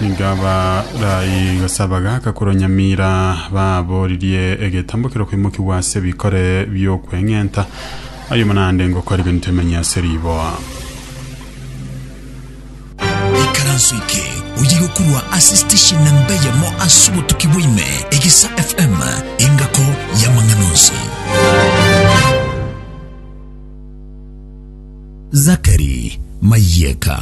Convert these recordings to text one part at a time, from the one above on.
Nigo abaraai gasaba gaka korwa Nyamira babooririe egetambo keria okoimokigwa ase ebikore bi'okweng'enta, ayomo naende ngoko arigenete emenye ase riboa. Ikaranso eke oyige korwa ase station namba eyemo ase obotuki bwa ime, Egesa FM, engako y'amang'ana onsi. Zachary Mayieka.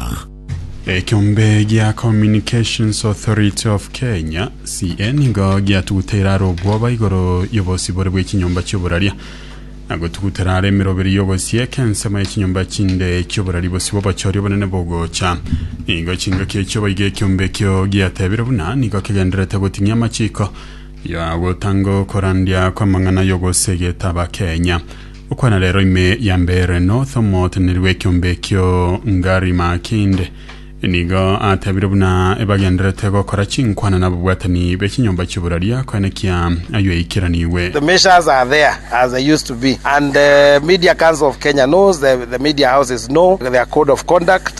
Ekiombe gia Communications Authority of Kenya, CA, nigo giatuguteire are obwoba igoro y'obosibore bw'echinyomba chi'oboraria na gotugutera are emeroberi y'ogosieka ensemo y'echinyomba chinde chi'oborari bosibwe obochori obonene bogocha. Nigo chingaki echio baiga ekiombe ekio giatebire buna nigo kegendererete goting'ia amachiko ya gotanga okorandia kw'amang'ana y'ogosegeta Abakenya. Okwana rero ime ya mbere North omoteneneri bw'ekiombe ekio Ngari Makinde nigo atebire buna ebagenderete gokora chinkwana nababwatani be chinyomba chi'oboraria koenekia ayio eikeranigwe. The measures are there as they used to be and the Media Council of Kenya knows, the media houses know their code of conduct.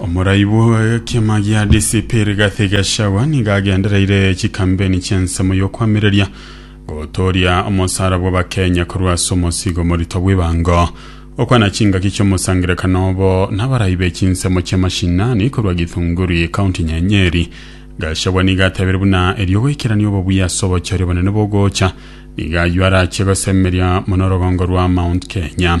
omoraibu w'ekiama gia DCP Rigathi Gachagua nigo agendereire chikambeni chi'ensemo y'okwamireria gotooria omosara bw'Abakenya korwa ase omosigo morito bw'ebango. Okwana chingaki chi'omosangererekano obo n'abarai be chinsemo chi'amashinani korwa Githunguri, County ya Nyeri. Gachagua nigo atebire buna erio goikerania obobuya ase obochori obonene bogocha nigo ayio arachie gosemeria mono orogongo rwa Mount Kenya.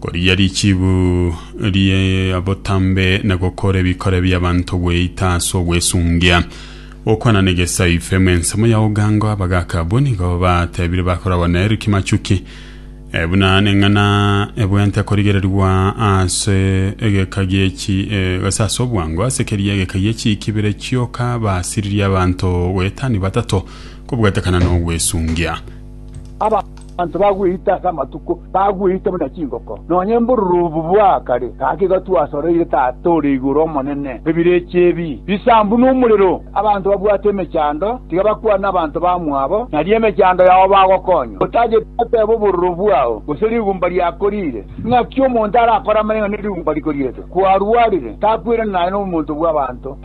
Korigia richibu ri'obotambe na gokora ebikore bi'abanto gweita ase ogwesungia. Gokwana negesaife mu ensemo ya ogango abagaaka abwo nigo batebire bakoragwa na Eric Machuki eh, buna neng'ana ebwente korigererigwa ase egeka giechi eh, gose ase obwango ase keria egeka giechi kibere chioka basiririe abanto goetania batato kobwatekana n'ogwesungia. Abanto bagweita ase amatuko, bagweita buna chingoko, nonya mborurubu bwa kare gaki gatwasoreire Tata ore igoro omonene, ebirecha ebi bisambu nomorero. Abanto babwate emechando tiga bakwane abanto bamwabo, nario emechando yao bagokonywa. Otagete goteba obororo bwao, gose rigumba riako riire. Ng'aki omonto arakore amanyang'ana ne rigumba rikoriete? Kwarwarire, takwirana naye nomonto bw'abanto.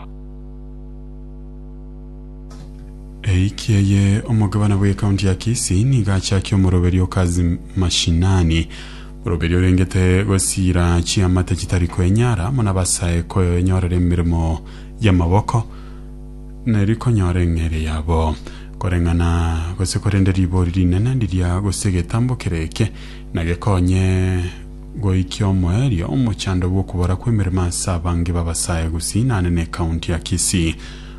Eiki eye omogabana bw'ekaunti ya Kisii nigo achakia omoroberi o Kazi Mashinani, moroberi orengete gosiira chiamate chitari kwenyara amo nabasae koenyorera emeremo y'amaboko neri konyora eng'eria yabo. Koreng'ana gose korende ribori rinene riria gose egetambokero eke nagekonye goikia omoerio omochando bw'okobora kw'emeremo ase abange b'abasae gosinane n'ekaunti ya Kisii.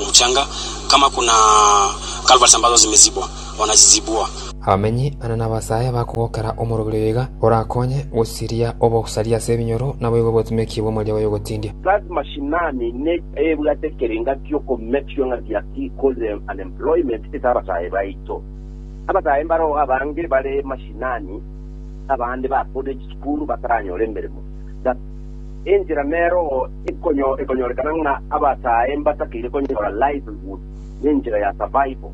Omochanga, kama kuna Kalvari sambazo zimezibwa, wanazizibua. Abamenyi ane n'abasae bakogokera omorobiri oyo iga, orakonye gosiria obosaria ase ebinyoro, naboigo botumeki bw'omoria bw'oyogotindia. Kazi mashinani ne ebwate ekerenga kioko make sure ng'a dia ki cause unemployment ase abasae baito. Abasae mbaroo abange bare mashinani abande ba college school bataranyora emeremo. The. Enchera nero ekonyorekana ng'a abataae mbatakeire konyora livelihood nenchera ya survival.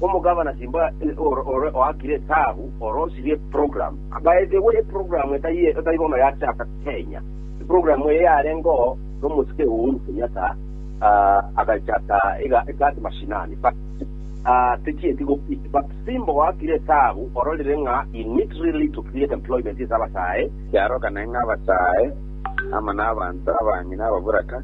Omogabana Simba ore oakire etaabu orosirie eprogram. By the way eprogram etari bono yachaka Kenya. Eprogram eye yarengeo nomosike Uhuru Kenyatta agachaka iga egati mashinani but techieti gopik but Simba oakire etaabu ororire ng'a he need really to create employment ase abataae. Yarogane ng'a abataae amo nabaanto abang'e na ababoraka,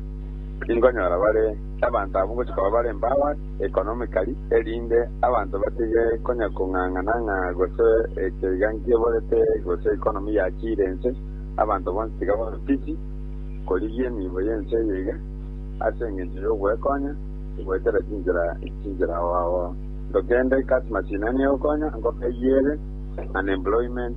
tinkonyora bare abanto abwo ngochia koba bare empowered economically, erinde abanto batige konya kong'ang'ana ng'a gose eke iga nkiborete gose economy yachiire ense, abanto bonsi tiga babe busy korigia emiibo y'ense eye iga, ase engencho y'ogwekonya goetera chinchera chinchera oo. Tokende, Customers inani egokonya, nkoka eyie ere unemployment.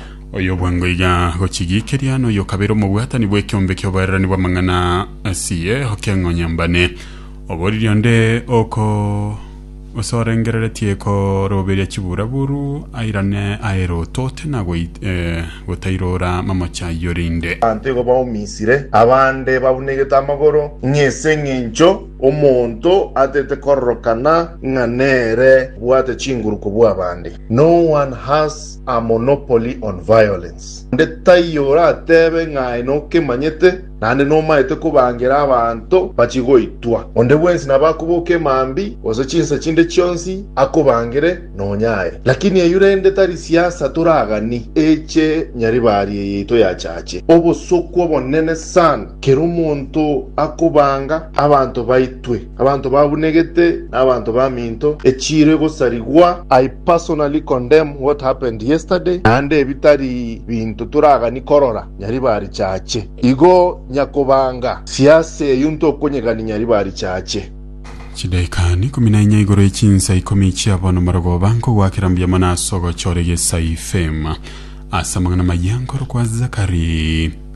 Oyobwangoiga agochigiikeria, na oyokabere omobwatani bw'ekiombe ki'oboererani bw'amang'ana asie okeng'onyambane. Oboriri onde oko osorengereretie koroberia chiburaburu airane aere otote na goit- eh, gotairora mamoche ayio rinde. Abanto igo baumisire, abande babunegete amagoro, ng'a ase engencho omonto atete kororokana ng'a nere obwate chinguru kobua abande. No one has A Monopoly on Violence. Onde taiyo orateebe ng'a aye nokemanyete, naende nomaete kobangera abanto bachie goitwa. Onde bwensi nabo akoboka emambi, gose chinsa chinde chionsi, akobangere nonya aye. Lakini eyio rende tari siasa toragani, eche nyaribari eyaito yachache. Obosokwa obonene sana, kera omonto akobanga abanto baitwe. Abanto babunegete nabanto baminto echire gosarigwa. I personally condemn what happened yesterday naende ebitari binto toragani korora nyaribari chache igo nyakobanga siasa eyio ntokonyegani nyaribari chache. Chidaika ikomi na inya igoro ye chinsa ikomi chia bono marogoba nkogoakera mbuya mono ase ogochora egesai, fame, ase amang'ana amaya nkorokwa Zachary.